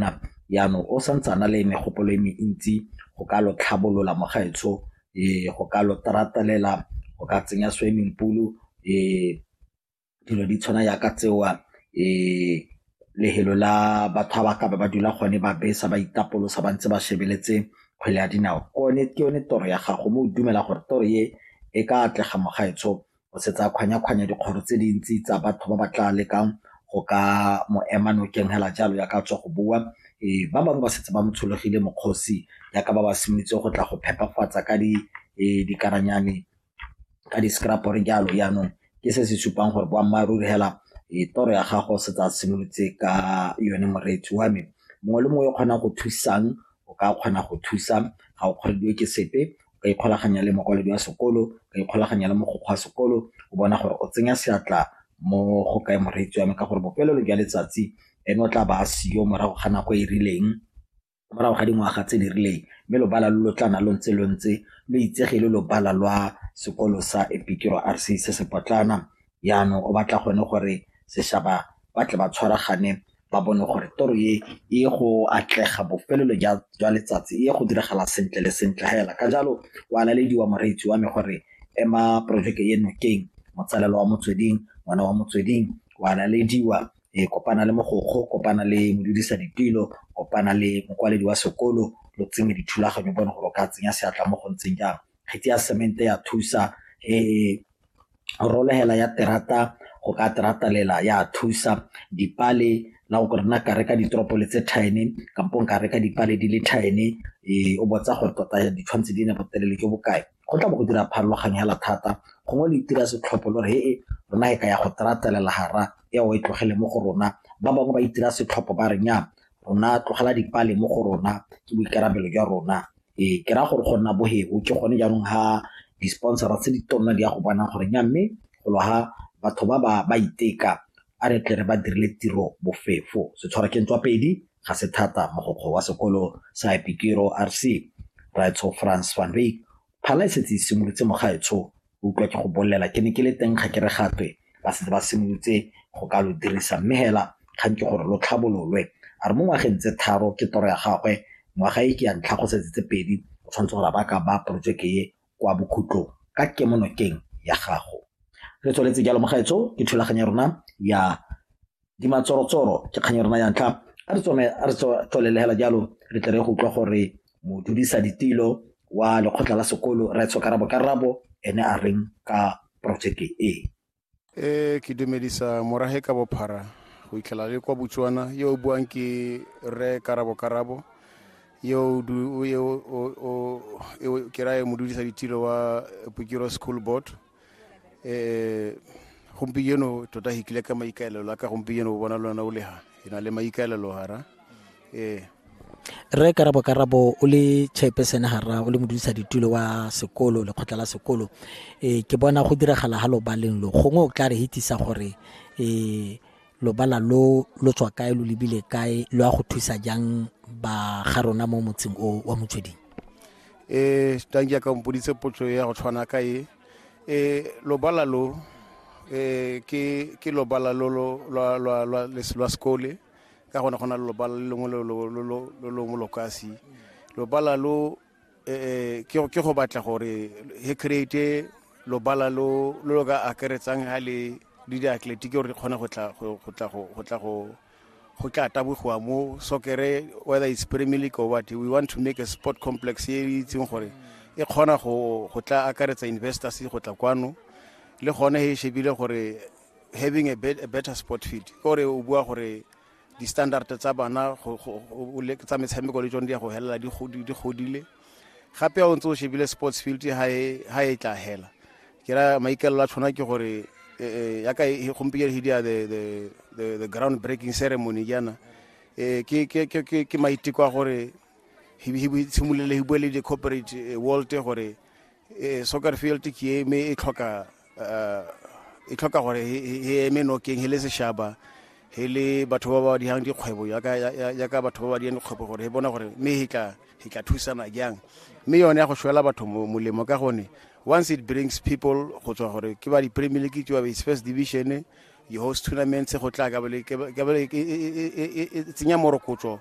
nap yanong o santse a na le megopolo e mentsi go ka lo tlhabolola mo gaetsho um go ka lo tratalela go ka tsenya swimming pool um dilo di tshwana yaka tseo um lefelo la batho ba ba ka ba ba dula gone ba besa ba itapolosa ba ntse ba shebeletse kgwele ya dinao ke yone toro ya gago mo o dumela gore toro e e ka atlega mo gaetsho go se tsaya kgwanya-kgwanya dikgoro tse dintsi tsa batho ba ba tla lekang go ka mo ema nokeng hela jalo ya ka tswa go bua e ba bangwe ba setse ba mo tshologile mokgosi ya ka ba ba simolotse go tla go phepafatsa ka di e, dikaranyane ka di-scrapore jalo yaanong ke se se supang gore boammaaruri hela e, toro ya gago se tsa simolotse ka yone moreetsi wa me mongwe le mongwe o kgonang go thusang o ka kgona go thusa ga o kgorediwe ke sepe ka ikgolaganya le mokwaledi wa sekolo, ka ikgolaganya le mogokgo wa sekolo o bona gore o tsenya seatla mo go kae moreetsi wa me ka gore bofelelo jwa letsatsi ene o tla ba a seyo morago ga nako e rileng, morago ga dingwaga tse di rileng mme lobala lo lo tla nna lo ntse lo ntse lo itsege e le lobala lwa sekolo sa Piet Retief se se potlana. yanong o batla gone gore seshaba ba tle ba tshwaragane ba bone gore toro e e go atlega bofelelo jwa letsatsi e go diragala sentle le sentle hela ka jalo wa lalediwa moreetsi wa me gore ema porojeke e nokeng motsalelo wa motsweding ngwana wa motsweding wa lalediwa e kopana le mogokgo kopana le modudisa ditilo kopana le mokwaledi wa sekolo lo tsenye dithulaganyo bone gore o ka tsenya seatla mo go ntseng jang kgetsi ya semente ya thusa e rolegela ya terata go ka teratalela ya thusa dipale la go rena ka reka ditoropo le tse thine kampo ka reka dipale di le thine e, o botsa gore tota ditshwantshe di ne botelele jo bokae go tla bo go dira pharologanyo hela thata gongwe le itira setlhopho lo re e rona e ka ya go teratelela gara ya o e tlogele mo go rona ba bangwe ba itira setlhopho ba re nya rona tlogela dipale mo go rona ke boikarabelo jwa rona ee ke raya gore go nna boheo ke gone jaanong ha di-sponsora tse di tonna di ya go bonang gore nya mme golo ha batho ba ba ba iteka a re tle re ba dirile tiro bofefo setshwara ke ntswa pedi ga se thata mogokgo wa sekolo sa epikero rc raitsho france van veek phala e setse e simolotse mogaetsho o utlwa ke go bolela ke ne ke le teng ga ke re gatwe ba setse ba simolotse go ka lo dirisa mme hela kgang ke gore lo tlhabololwe a re mo ngwageng tse tharo ke toro ya gagwe ngwaga e ke ya ntlha go setse tse pedi o tshwanetse gore ba ka ba porojeke e kwa bokhutlong ka kemonokeng ya gago re tsweletse jalo mogaetsho ke thulaganyo ya rona ya di matsorotsoro ke kgang e rena ya ntlha a re tsome a re tswelelehela jalo re tle re go utlwa gore modudisa ditilo wa lekgotla la sekolo raetsho karabo karabo ene a reng ka projeke e e ke dumedisa morage ka bophara go itlhela le kwa botswana yo o buang ke rre karabo karabo yo ke raye modudisa ditilo wa pokiro school board eh gompieno tota hi kile ka maikaelelo a ka gompieno o bona lona o le ha e na le maikaelelo hara eh re karabo karabo o le chairperson hara o le modudisa ditulo wa sekolo lekgotla la sekolo eh ke bona go diragala ha lo baleng lo gongwe o tla re hitisa gore eh lobala lo lo tswa kae lo lebile kae lo a go thusa jang ba ga rona mo motseng o wa motsweding e tang ke ka mpoditse potso ya go tshwana ka e e lobala lo e ke ke lobala lo lo lwa lwa lwa les- lwa sekole ka gone go na le lobala le lengwe lo lo- lo- lo- lo longwe lo kasi lobala lo eh, ke ke go batla gore he create lobala lo lo lo ka akaretsang ha le le diatletiki gore re kgone go tla go go tla go go tla go go tla tabogiwa mo sokere whether it's premier league or what we want to make a sport complex e e itseng gore e kgona go tla akaretsa investors go tla kwano le gone e shebile gore having a, bet, a better sport field gore o bua gore di-standard tsa bana tsa metshameko le tsone di ya go felela di godile gape o ntse o shebile sports field ha e, e tla hela ke ra maikalelo a tshwana ke gore e, e, yaka gompieno he dia the ground breaking ceremony jaana um ke maiteko a gore simolole he bue le di-corporate world gore e soccer field ke e me e tlhoka eh, e tlhoka gore e eme nokeng he le seshaba he le batho ba ba dihang dikgwebo yaka batho ba ba dihang dikgwebo gore e bona gore mme e tla e tla thusana jang mme yone ya go shwela batho molemo ka gone once it brings people go tswa gore ke ba di-premier league ke ba ba first division di-host tournaments go tla ka bale e tsenya morokotso